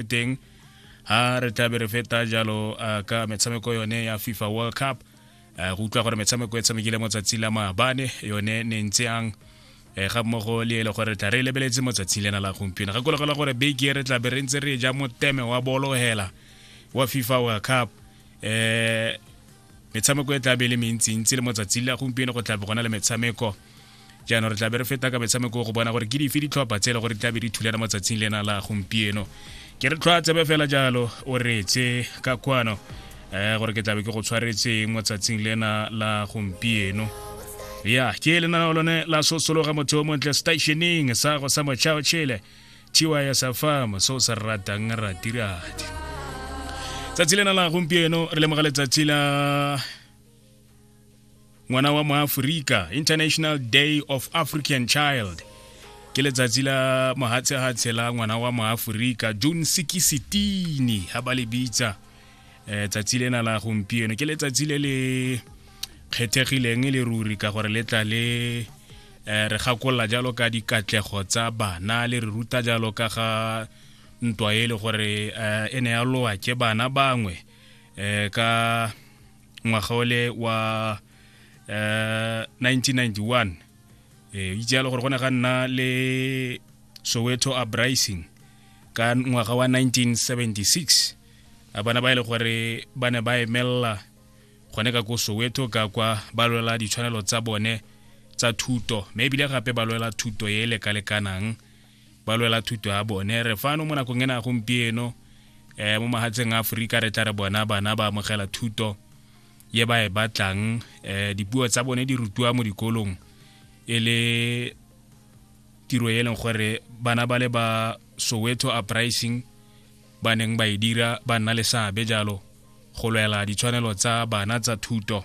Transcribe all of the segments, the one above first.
e teng ha re tlabe re feta jalo uh, ka metshameko yone ya fifa world cup uh, go utlwa gore metshameko e tshamekile mo tsatsi la maabane yone ne ntse yang e ga mmogo le ele gore tla re lebeletse mo tsatsing lena la gompieno ga kologela gore beke e re tla be re ntse re ja moteme wa bolo hela wa fifa world cup um metshameko e tla be le mentsintsi le mo tsatsing la gompieno go tla be gona le metshameko jaanong re tla be re feta ka metshameko go bona gore ke dife ditlhopha tse e le gore di tla be di thulana matsatsing lena la gompieno ke re tlhwa tsebe fela jalo o retse ka kwano um gore ke tlabe ke go tshwaretseng mo tsatsing lena la gompieno ya ke lenaneo lone la sosologa motho o montle stationeng sa go sa mochao chile tiwa ya sa fam se o se ratang ratiradi tsatsi lena la gompieno re lemoga letsatsi la ngwana wa moaforika international day of african child ke letsatsi la mohatshehatshe la ngwana wa moaforika june sikisitini ha ba le bitsa um tsatsi lena la gompieno ke letsatsi le le kgethegileng le ruri ka gore le tla le um re gakolola jalo ka dikatlego tsa bana le re ruta jalo ka ga ntwa e le gore um e ne ya lowa ke bana bangwe um ka ngwaga ole wa uh, eh, 1991 e itse yalo gore go ne ga nna le soweto uprising ka ngwaga wa 1976 a bana ba e le gore ba ne ba emelela gone ka ko soweto ka kwa ba lwela ditshwanelo tsa bone tsa thuto mme ebile gape ba lwela thuto e e lekalekanang ba lwela thuto ya bone re fano mo nakong ena gompieno um mo mahatsheng a aforika re tla re bona bana ba amogela thuto ye ba e batlang um dipuo tsa bone di rutiwa mo dikolong e le tiro e leng gore bana ba le ba soweto uprising ba neng ba e dira ba nna le seabe jalo go lwela ditshwanelo tsa bana tsa thuto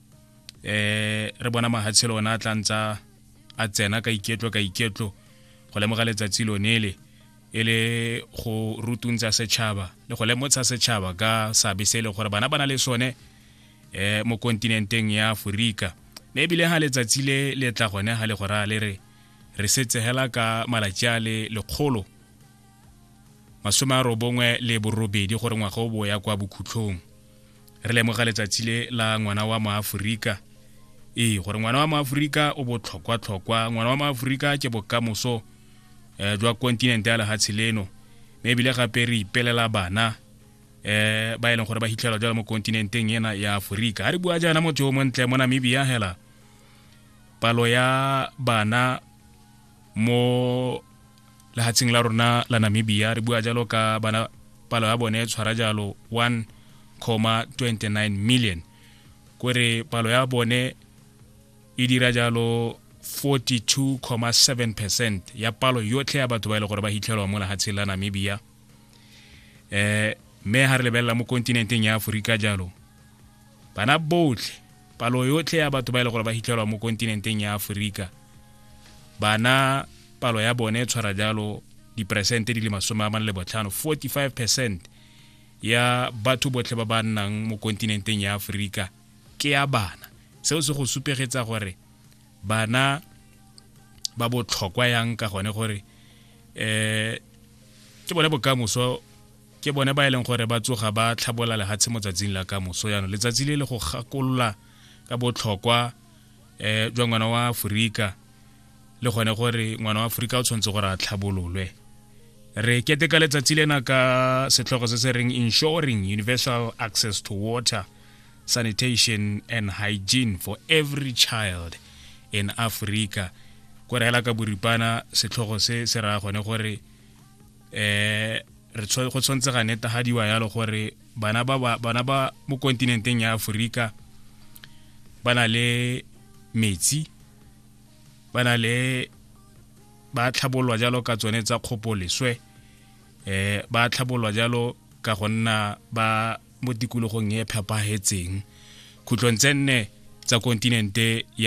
eh re bona mahatshelo ona a tla ntsa a tsena ka iketlo ka iketlo go lemoga letsatsi lone le e le go rutuntsa setšhaba le go lemotsha setšhaba ka seabe se e le gore bana ba na le sone um mo kontinenteng ya aforika mme ebile ga letsatsi le le tla gone ga le go raya le re re setsegela ka malatsi a le lekgolo masome a robongwe le borobedi gore ngwaga o bo ya kwa bokhutlhong re lemoga letsatsi le la ngwana wa moaforika ee gore ngwana wa moaforika o botlhokwa-tlhokwa ngwana wa moaforika ke bokamoso um jwa kontinente ya lehatshe leno mme ebile gape re ipelela bana um ba e leng gore ba hitlhelwa jalo mo kontinenteng ena ya aforika ga re bua jaana motho o montle mo namibia hela palo ya bana mo lehatsheng la rona la namibia re bua jalo ka bana palo ya bone tshwara jalo 1,29 million kore palo ya bone e dira jalo 42,7 percent ya palo yotlhe ya batho ba e le gore ba hitlhelwa mo lehatsheng la namibia eh mme ha re lebelela mo kontinenteng ya aforika jalo bana botlhe palo yotlhe ya batho ba e le gore ba hitlhelwa mo kontinenteng ya aforika bana palo ya bone e tshwara jalo diperesente di le masome a mane le botlhano 45 percent ya batho botlhe ba ba nnang mo kontinenteng ya aforika ke ya bana seo se go supegetsa gore bana ba botlhokwa yang ka gone gore um ke bone bokamoso Ke bone ba e leng gore ba tsoga ba tlhabola lehatshe mo tsatsing la ka moso yano letsatsi le le go gakolola ka botlhokwa um jwa ngwana wa aforika le gone gore ngwana wa aforika o tshwanetse gore a tlhabololwe re keteka letsatsi lena ka setlhogo se se reng ensuring universal access to water sanitation and hygiene for every child in africa ko reela ka boripana setlhogo se se raya gone gore eh re go tshwanetse ga netagadiwa yalo gore bana ba bana ba mo kontinenteng ya Aforika ba na le metsi ba na le ba tlhabolwa jalo ka tsone tsa kgopoleswe eh ba tlhabolwa jalo ka go nna ba mo tikologong e phepagetseng khutlong tse nne tsa kontinente ya